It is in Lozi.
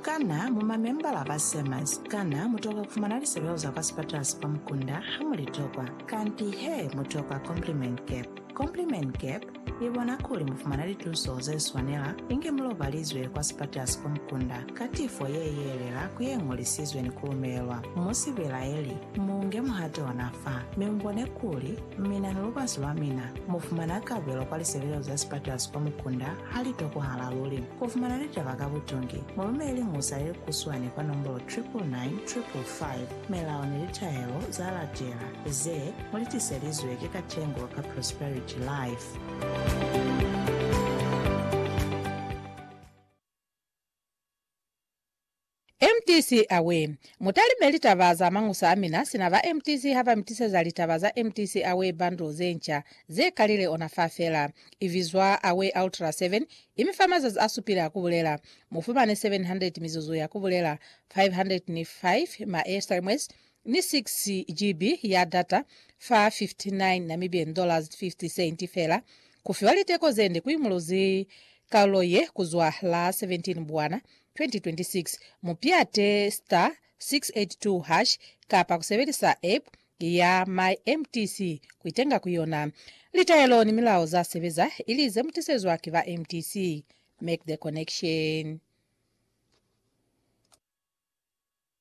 Kana mu mamembala ba SEMAS? Kana mu toka ku fumana lisebeo za kwa sipatala sa kwa mukunda ha mu li tokwa? Kanti he, mu tokwa Compliment Cap. Compliment Cap i bona kuli mu fumana lituso ze swanela inge mu lobalizwe kwa sipatala sa kwa mukunda ka tifo ye yelela ku ye ñolisizwe ni ku lumelelwa. Mu si belaeli, mu nge muhato ona fa, mi mu bone kuli mina ni lubazi lwa mina mu fumana kabelo kwa lisebeo za sipatala sa kwa mukunda. Ha li tokwahala luli ku fumana litaba ka butungi, mu lumeleli musa ye kuswani kwa nombolo 999555, Melao ni Litahelo za Latela, ze mu li tiselizwe ki Katengo ka Prosperity Life. MTC Away! Mutalime litaba za mañusa a mina sina ba MTC ha ba mi tiseza litaba za MTC Away bundle ze nca ze kalile ona fa fela. I bizwa Away Ultra 7, i mi fa mazazi a supile a ku bulela. Mu fumane 700 mizuzu ya ku bulela, 505 ma airstreams, ni 6 GB ya data fa N59 dollars fela, ku fiwa liteko ze nde ku imuluzi kalulo ye ku zwa la 17 Mbwana 2026. Mu piate *682# kapa ku sebelisa app ya MyMTC ku itenga ku yona. Litaelo ni milao za sebeza ili ze mu tisezwa ki ba MTC. Make the connection.